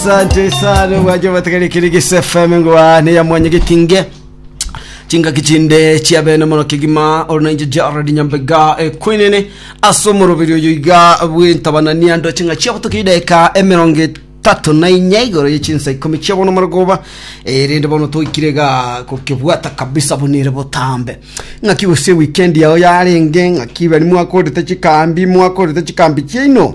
Asante sana bwaje bategere kiri gise FM ngwa ne ya mwanya gitinge chingaki chinde chia bene mono kigima orunenje Jared Nyambega ekwenene aso morobiri oyo iga bwentabanania ndo chinga chia butuki deka emerongo tatu na inya igoro ye chinsa ikumi chia bono marogoba erinde bono toikire ga kokebwata kabisa bunire botambe ngaki gose weekend yao yarenge ngaki bari mwakorete chikambi mwakorete chikambi chiaino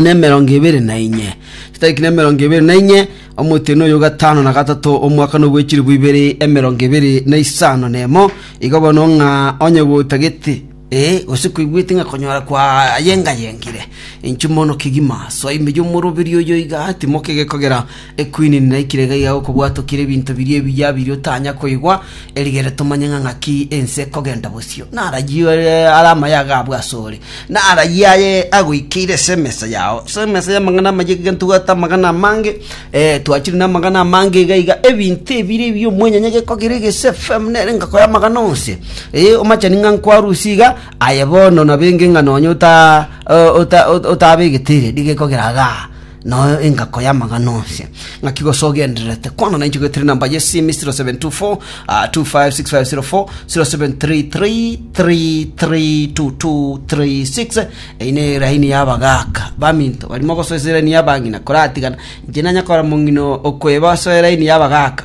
nemerongo ebere na inye. Chitariki nemerongo ebere na inye, omotienyi oyo o gatano na gatato, omwaka nobwechiribu ibere emerongo ebere na isano nemo, igo bono ng'a onye gotagete, ee, gose koigwete ng'a konyora kwayengayengire, inchumono kegima, soa ime y'omoroberio oyo iga, timoke gekogera, Ekwini ninaikire iga iga gokobwatokire ebinto biria ebiya biria otanya koigwa, erigere tomanye ng'a ng'aki ense ekogenda bosio. Narayie ore are amayaga abwo asore, narayie aye agoikeire ase emesa yao, ase emesa y'amang'ana amayia iga ntobwate amagana amange, eh, twachire namagana amange iga iga, ebinto ebire ebi omwenyanya gekogera egese FM nere engako y'amagana onse. Eh, omachani ng'a nkwarusia iga, aye bono nabo enge ng'a nonye ota o- ota ota otabegete ere, nigo ekogera igaa. Noyo engako y'amang'ana onsi. Ng'aki gose ogendererete kwana nainche goetera enamba ye simi 0724 ah, 256504 0733332236 eyi ne eraini y'abagaka baminto barimo gosoesa eraini y'abang'ina koratigana inche nanyakora mong'ina okweba ase eraini y'abagaka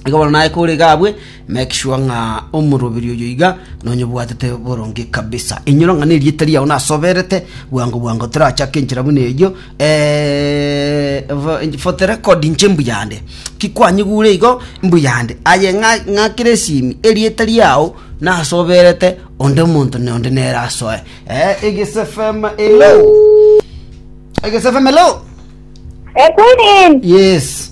igo bono naye kore gabwe Make sure ng'a omoroberi oyo iga nonyobwatete boronge kabisa. Inyora ng'a nerieta riao nasoberete bwango bwango torachake enchera buna eyio eh, vo- for the record inche mbuyande kikwanyigure igo mbuyande aye ng'a ng'akere esimi erieta riao nasoberete onde omonto na onde nere asoe eh, Egese FM hello Egese FM hello Egunin, yes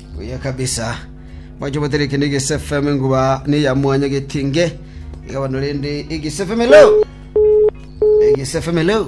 Buya kabisa. Mwanche gotera eke negesfm enguba neya mwanya getinge igabana rende egesfm hello egesfm hello